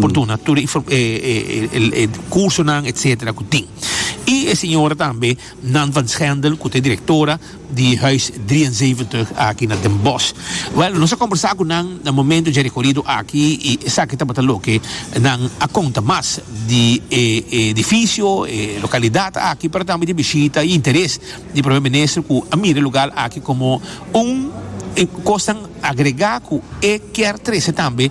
por duna tur e cursonan etcetera cu tin y e señora tambe Nan van Schendel cu ta e directora di huis drie en zeventig aki na Den Bosch wel nos a conversa cu nan na momento dje recorido aki y esaki tabata loke nan a conta mas di e edificio e localidad aki pero tambe di e bishita y interes di Prome Minister cu a mira e lugar aki como un cosnan agrega cu e kier trece tambe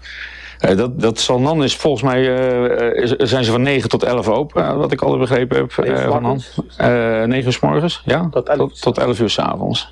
Nee, dat, dat zal non is volgens mij eh, eh, zijn ze van 9 tot 11 open, eh, wat ik altijd begrepen heb. Negen eh, van morgens? eh, 9 uur s morgens, ja? Tot 11 tot, tot 11 uur s avonds.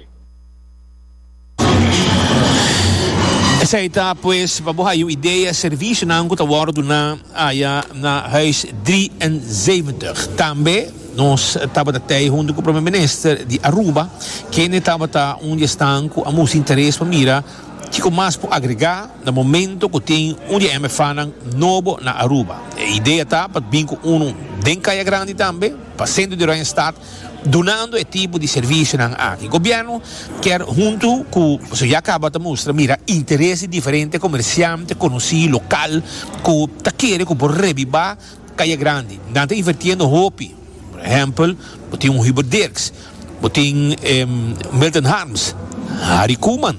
Esei ta pues pa bo hay un idea servisionan ku ta wòrdu duna aya na huis 73. Tambe nos tabata tei huntu ku Prome Minister di Aruba, kende tabata un di esnan ku a musti interes pa mira Kico mas por agrega na momento cu tin un di e MFAnan nobo na Aruba? E idea ta pa bin cu uno den Caya Grandi tambe, pa centro di Oranjestad, dunando e tipo di servicionan aki. Gobierno kier hunto cu, pasobra ya caba ta mustra, mira interes di diferente comerciante conoci local cu ta kere cu por rebiba. Kaya Grandi, nan ta invertiendo hopi. Por ehempel, bo tin un Hubert Dirks, bo tin e Milton Harms, Harry Koeman,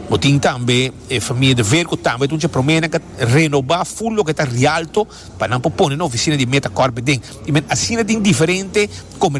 bo tin tambe e famia De Veer cu tambe ta un chaprome, nan ta renoba full loke ta Rialto pa nan por pone na oficina di Metacorp biden. I men asina tin diferente comer.